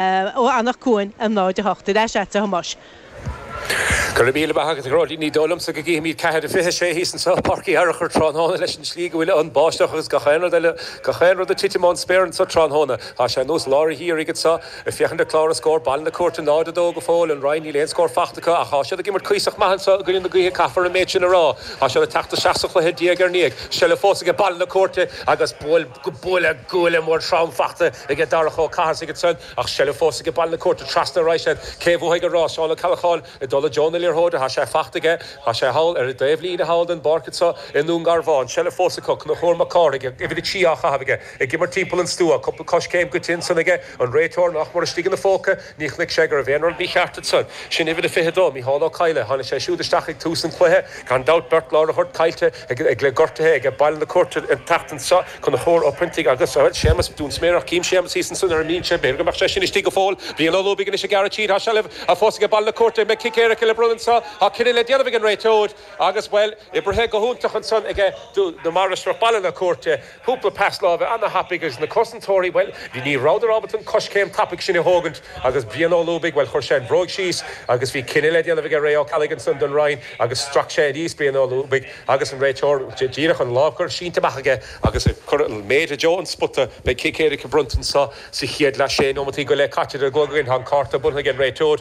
ó Anach Cuain a náid a hocht ar ais agat a Thomáis. Go raibh míle maith agat, a Ghearóidín, ní dóigh liomsa go gcífimíd ceathair a fiche a sé thíos anso i bPáirc Uí Fhearachair tráthnóna leis an tslí go bhfuil an báisteach agus gach aon rud eile, gach aon rud ag titim ón spéir anso tráthnóna. Tá sé ar nós lár an gheimhridh anso. Ag féachaint le clár an scóir, Baile na Cúirte 0-2 go fóill, an Rinn níl aon scór fachta acu ach tá siad ag imirt cuíosach maith anso i gcoinne na gaoithe caithfear an méid sin a rá. Tá siad ag teacht isteach sa chluiche diaidh ar ndiaidh. Seilbh fós aige Baile na Cúirte agus go buille guaille mór trom fachta aige Darach Ó Cathasaigh ansan ach seilbh fós aige Baile na Cúirte trasna ar aghaidh siad cé bhuafaidh an rás Seán Ó Ceallacháin ag dul i dtreo na liathróide tá sé fachta aige tá sé thall ar an dtaobh líne thall den bpáirc anso i nDún Garbhán seilbh fós acu Conchúr Mac Cárthaigh ag uimhir a trí á chaitheamh aige ag imirt timpeall an stua cúpla coiscéim goite ansan aige an réiteoir nach mór istigh ina phóca ní chnoic sé go raibh aon rud mícheart ansan sin uimhir a fiche dó Micheál Ó Cadhla tháinig sé siúd isteach ag tús an cluiche gan dabht beirt lá ar a thoirt caillte Ag le gortaithe aige Baile na Cúirte an tseachtain seo Conchúr Ó Proinntigh agus bhuel Séamus Dúinsméarach Chím Séamus thíos ansin ar an mbinse B'fhéidir go mbeadh sé sin istigh go fóill Brian Ó Lúbaigh anois ag gearradh tríd Tá seilbh fós aige Baile na Cúirte Beidh cic éirice le bronnadh anso Tá cinneadh le déanamh ag an réiteoir agus bhuel oibrithe go hiontach ansan aige Dún na Mainistreach Baile na Cúirte cúpla pas láimhe ana-thapaidh agus na cosantóirí, bhuel, ní rabhadar ábalta an coiscéim tapaidh sin a thógaint agus Brian Ó Lúbaigh, bhuel, chuir sé an bhróig síos agus bhí cinneadh le déanamh aige Ray Ó Ceallaigh ansan don Rinn agus strac sé aníos Brian Ó Lúbaigh agus an réiteoir díreach an lámh chuir sínte amach aige agus chuir an mhéar i dtreo an spota. Beidh cic éirice bronnta anso sa chéad leath, sé nóimeataí go leith caite ar an gclog againn, tá an cárta bronnta ag an réiteoir.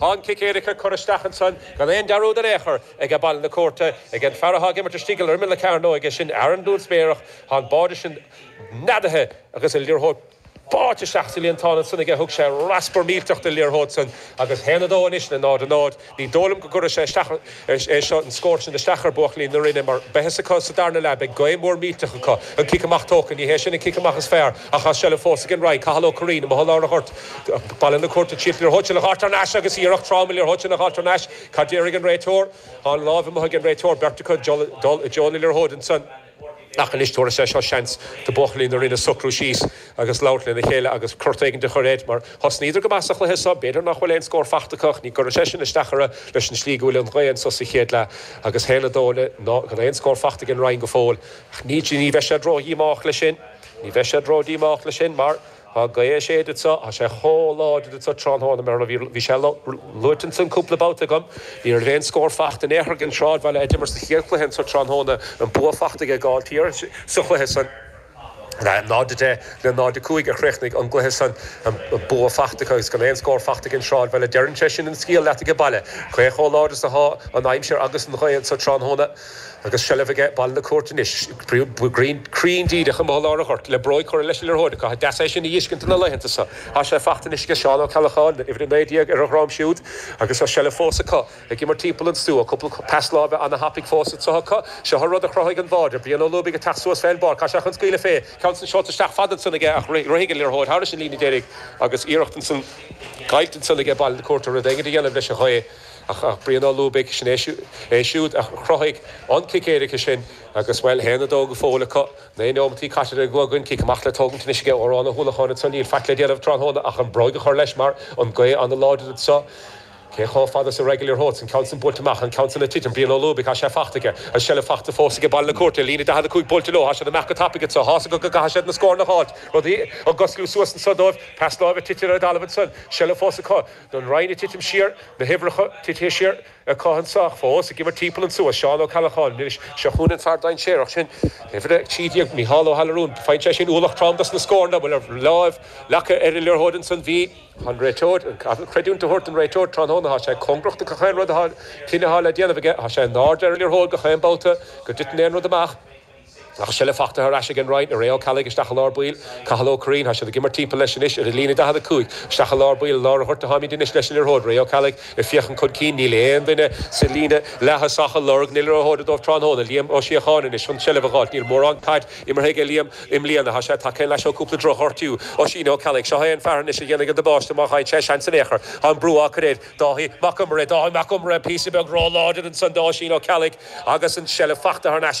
Tá an cic éirice curtha isteach ansan gan aon dearúd in aon chor aige Baile na Cúirte, aige an fear athá ag imirt istigh ar imeall na cearnóige sin, Aaron Dúinsméarach, thá an báide sin neadaithe agus an liathróid báite isteach sa líontán ansan aige, thug sé raspar millteach den liathróid san agus 1-2 anois le 0-0, ní dóigh liom go gcuirfidh sé isteach Is é seo an scór sin isteach ar bhuachaillí na Rinne mar beidh fhios acu sa darna leath beidh gaoth mhór millteach acu. An cic amach tógtha. Ní hé sin an cic amach is fearr ach tá seilbh fós ag an Rinn. Cathal Ó Curraoin, I mBothán Árthach Ghort Baile na Cúirte ag triail an liathróid sin a fháilt thar n-ais agus Iarracht Tráma liathróid sin a fháilt thar n-ais Cad déarfaidh an réiteoir? Tá an láimh amuigh ag an réiteoir. Beirt acu ag dul i dtreo na liathróide. Ansan. Ach anois tabharfaidh sé seo seans do buachaillí na Rinne socrú síos agus labhairt lena chéile agus cruth éigin a chur air mar thosnaíodar go maith sa chluiche so b'fhéidir nach bhfuil aon scór fachta acu ach ní chuirfidh sé sin isteach orthu leis an tslí go bhfuil an ghaoth anso sa chéad leath agus 1-2 le 0 gan aon scór fachta ag an Rinn go fóill ach ní bheidh siad ró-dhíomách leis sin mar. Tá gaoth ag séideadh anso, tá sé chomh láidir anso tráthnóna, mar bhí sé luaite ansin cúpla babhta agam. Ní raibh aon scór fachta in aon chor ag an Sráidbhaile a d'imir sa chéad chluiche anseo tráthnóna, an bua fachta aige Gailltír sa chluiche san, 0-10 le 0-5 a chríochnaigh an gcluiche san, an bua fachta acu agus gan aon scór fachta ag an Sráidbhaile. Deireann sé sin an scéal leat aige baile, cé chomh láidir is atá an aimsir agus an ghaoth anseo tráthnóna. Agus seilbh aige Baile na Cúirte anois, cruinn díreach i gcorplár an ghoirt, le bróig curtha leis an liathróid acu, ha, deas é sin a dh'fheiscint ins na laethanta so. Tá sé faighte anois aige Seán Ó Ceallacháin, uimhir 19, ar a dhroim siúd, agus tá seilbh fós acu, ag imirt timpeall an stua, cúpla pas láimhe ana-thapaidh fós anseo acu. Seo an rud a chruthaigh an bháide, Brian Ó Lúbaigh ag teacht suas fén bpáirc, tá sé chun scaoileadh fé, ceann san seolta isteach fada ansan aige ach rithfidh an liathróid thairis an líne deiridh agus iarracht ansan, caillte ansan aige Baile na Cúirte rud éigint a dhéanamh leis an ngaoth. Ach Brian Ó Lúbaigh, sin é é siúd a chruthaigh an cic éirice sin agus, bhuel, théann 2 go fóill acu. Naoi nóimeataí caite le go againn, cic amach le tógaint anois aige, Odhrán Ó hUallacháin anseo, níl faic le déanamh tráthnóna ach an bróig a chur leis mar an ghaoth an-láidir anseo. Cé chomh fada is a raghaidh an liathróid, an ceann san buailte amach, an ceann san ag titim, Brian Ó Lúbaigh, tá sé faighte aige, an seilbh faighte fós aige, Baile na Cúirte, líne 45 buailte leo, tá siad amach go tapaidh anseo, tá's acu go gcaithfidh siad na scóranna a fháilt, rudaí ag osclú suas anseo dóibh, pas láimhe tite ar an dtalamh ansan, seilbh fós acu. An Rinn ag titim siar, na huimhreacha titithe siar, ag cosaint ach fós, ag imirt timpeall an stua, Seán Ó Ceallacháin, anois, seo chugainn an fear dainséarach sin, uimhir a 13, Mícheál Ó hAllaráin, faigheann sé sin ualach trom dos na scóranna, bhuel an raibh láimh leagtha ar an liathróid ansan, bhí. An réiteoir, caithfear creidiúint a thabhairt don réiteoir tráthnóna, thá sé cóngarach do gach aon rud a thá, cinneadh a thá le déanamh aige, thá sé in airde ar an liathróid gach aon babhta go dtiteann aon rud amach, Ach seilbh fachta thar ais ag an Rinn, Ray Ó Ceallaigh isteach i lár baill, Cathal Ó Curraoin, tá siad ag imirt timpeall leis anois ar an líne 45 isteach i lár baill, i lár an ghoirt a tháimíd anois leis an liathróid, Ray Ó Ceallaigh ag féachaint chun cinn, níl aon duine sa líne leaththosach ag lorg na liathróide dóibh tráthnóna, Liam Ó Síocháin anois chun seilbh a ghabháilt, níl mórán caid imeartha aige Liam i mbliana, tá sé tagtha leis ó cúpla drochghortú, Oisín Ó Ceallaigh, seo é an fear anois a dhéanfaidh an damáiste má fhaigheann sé seans in aon chor, tá an brú á cur air, Dáithí Mac Iomaire, Dáithí Mac Iomaire píosa beag róláidir ansan do Oisín Ó Ceallaigh agus an seilbh fachta thar n-ais aige.